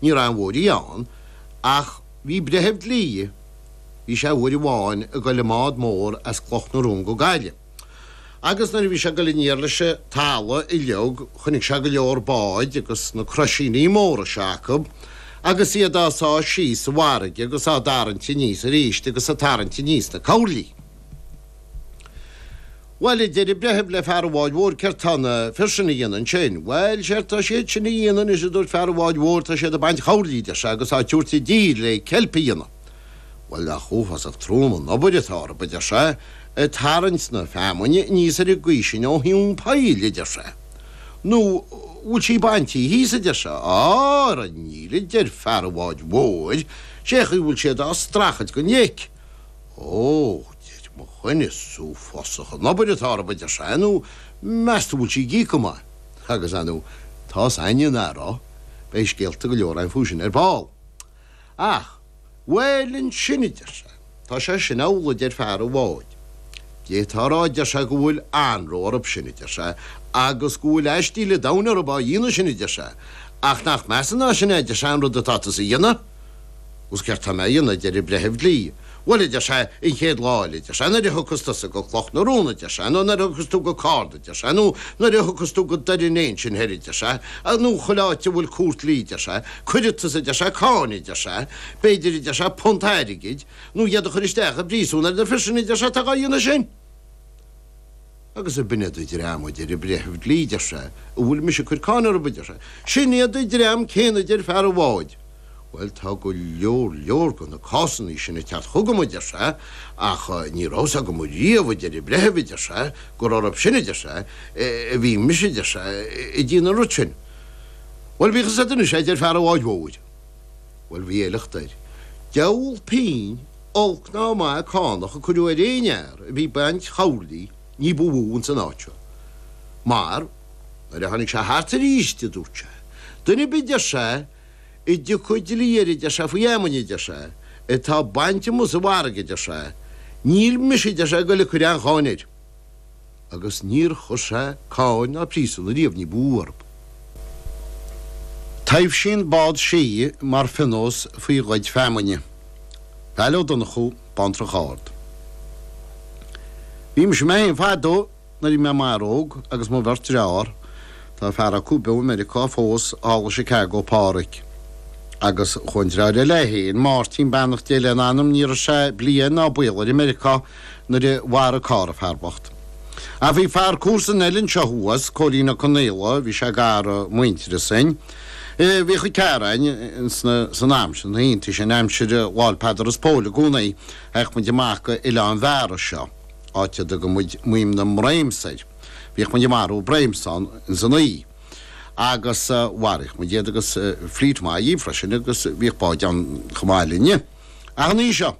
Ní raibh an bhuairí ann ach bhí breitheamh dlí, bhí sé uair amháin ag dul i mbád mór as Cloch na Rón go Gaillimh. Agus nuair a bhí sé ag dul aniar leis an talamh uiliog chonaic sé go leor báid agus na croisíní móra seo acu agus iad á sá síos sa bhfarraige agus á dtarraingt aníos arís agus ag tarraingt aníos na coirlí. Bhuel, a deir an breitheamh le fear an bháid mhóir, céard tá na fir sin a dhéanamh ansin? Bhuel, séard tá siad sin a dhéanamh anois a dúirt fear an bháid mhóir, tá siad ag baint choirlí, a deir sé, agus á tabhairt i dtír le ceilp a dhéanamh. Bhuel, nach uafásach trom an obair atá orthu, a deir sé, ag tarraingt na feamainne aníos ar an gcaoi sin ó thóin poill, a deir sé. Nó bhfuil sí baintí thíos, a deir sé. Á, ara níl, a deir fear an bháid mhóir, sé chaoi bhfuil siad á strachailt den leic. Ó! Mo choinsias is uafásach an obair atá orthu a deir sé nó meas tú bhfuil sí ag íoc go maith? Agus ar ndóigh tá sé ina anró beidh scéalta go leor agam faoi sin ar ball. Ach bhuel ansin a deir sé tá sé sin amhlaidh a deir fear an bháid. D'fhéadfá a rá a deir sé go bhfuil anró orthu sin a deir sé agus go bhfuil aistíl an domhain orthu á dhéanamh sin a deir sé ach nach measa ná sin a deir sé an rud atá tusa a dhéanamh? Agus céard tá mé a dhéanamh, a deir an breitheamh dlí. Bhuel, a deir sé, an chéad lá eile, a deir sé, nuair a thiocfas tusa go Cloch na Rón, a deir sé, nó nuair a thiocfas tú go Cárna, a deir sé, nó nuair a thiocfas tú go Doire an Fhéich ansin thoir, a deir sé, nó chuile áit a bhfuil cúirt dlí, a deir sé, cuirfidh tusa, a deir sé, cáin, a deir sé, b'fhéidir, a deir sé, punt airgid, nó iad a chur isteach i bpríosún ar na fir sin, a deir sé, atá dhá dhéanamh sin. Agus ab in iad an dream a deir a breitheamh dlí deir sé a bhfuil mise ag cur cáin orthu a deir sé. Sin iad a dream céanna a deir fear an bháid. Bhuel tá go leor leor go na cásannaí sin ag teacht chugam a deir sé ach ní raibh fhios agam riamh a deir a breitheamh a deir sé gur orthu sin a deir sé a bhí mise a deir sé ag déanamh an rud sin. Bhuel bíodh fhios agat anois é a deir fear an bháid mhóir. Bhuel bhí a shliocht air. Deabhal pínn. Olc ná maith a cánach a cuireadh ar aon fhear a bhí baint choirlí ní ba mhó ins an áit seo. Mar, nuair a tháinig sé thart aríst, dúirt sé, duine ar bith, deir sé, a dtiocfaidh dlí air, deir sé, faoi fheamainn, deir sé, atá bainte amuigh sa bhfarraige, deir sé, níl mise, deir sé, ag goil a cuir aon cháin air. agus níor chuir sé cáin ná príosún ariamh ní ba mhó orthu. Taibhsíonn bád sídhe mar phionós faoi ghoid feamainne. Vail Ó Donnchú, Bántrach Ard. Bhí mise mé féin fadó nuair bhí mé i m'fhear óg agus mo bheirt dreár, tá fear acu beo i Meiriceá fós, thall i Chicago, Pádhraic agus chuaigh an dreáir eile é fhéin, Máirtín, beannacht Dé lena anam, ní raibh sé bliain ná baol air i Meiriceá, nuair a mharaigh carr an fear bocht. Ach bhí fear comharsan an oileáin seo thuas, Cóilín Ó Conaola, bhí sé gar i muintearas. Bhíodh a ghearáin sna, san am sin, iontaí sin, aimsir Lá'l Peadar is Póil i gcónaí, théadh muid amach go Oileán Bheara seo, áit a dtugadh muid Maoim na mBroim soir. Bhíodh muid ag marú bréim san, san oích'. Agus mharaíodh muid iad agus fleet maith í freisin agus bhíodh báid ann chomh maith linne. Ach an oích' seo.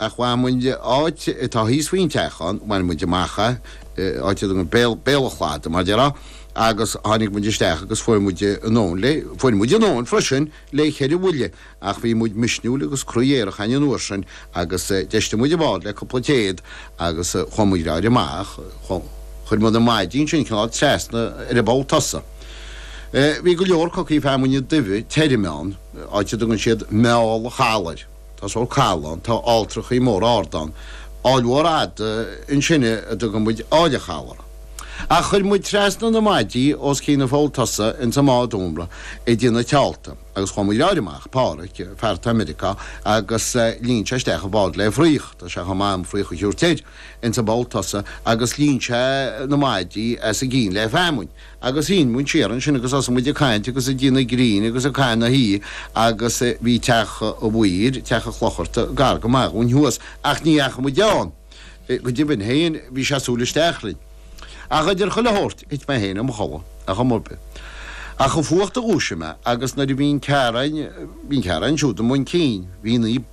ach ach meall áit atá thíos faoin teach ann, bhain muid amach é, áit a dtugann Béal, Béal an Chladaigh mar déarfá, agus tháinig muid isteach agus fuair muid anonn le, fuair muid anró freisin le cheithre bhuille ach bhí muid misniúil agus croí aerach an uair sin agus d'fheistigh muid an bád le cúpla téad agus chuaigh muid láidir amach, chuir muid na maidí ansin cineál trasna ar an bpoll tosaigh. Bhí go leor cocaí feamainne duibhe tirime ann, áit a dtugann siad Meall an Chalair. Tá sórt caladh ann, tá ailltreachaí móra arda ann, aill mhór fhada ansin a dtugann muid Aill an Chalaidh air. Ach chuir muid trasna na maidí os cionn an pholl tosaigh ins an mbád iomartha ag déanamh tealta agus chuaigh muid amach, Páraic, fear atá i Meiriceá, agus líon sé isteach an bád le fraoch, tá sé chomh maith an fraoch a thiúirt air, ins an bpoll tosaigh agus líon sé na maidí os a gcionn le feamainn. agus shín muid siar ansin agus thosaigh muid ag caint agus ag déanamh grinn agus ag caitheamh na hoíche agus bhí teach an mhaoir, teach an chlocharta, gar go maith dhúinn thuas ach ní dheachaigh muid ann, go deimhin féin bhí sé sa tsúil isteach orainn. Ach idir chuile shórt thit mé féin i mo chodladh ach ar nós ar bith. Ach ba é an fuacht a dhúisigh mé agus nuair a bhí an Ciarraí, bhí an Ciarraí ansiúd i mbun cinn, bhí Naomh.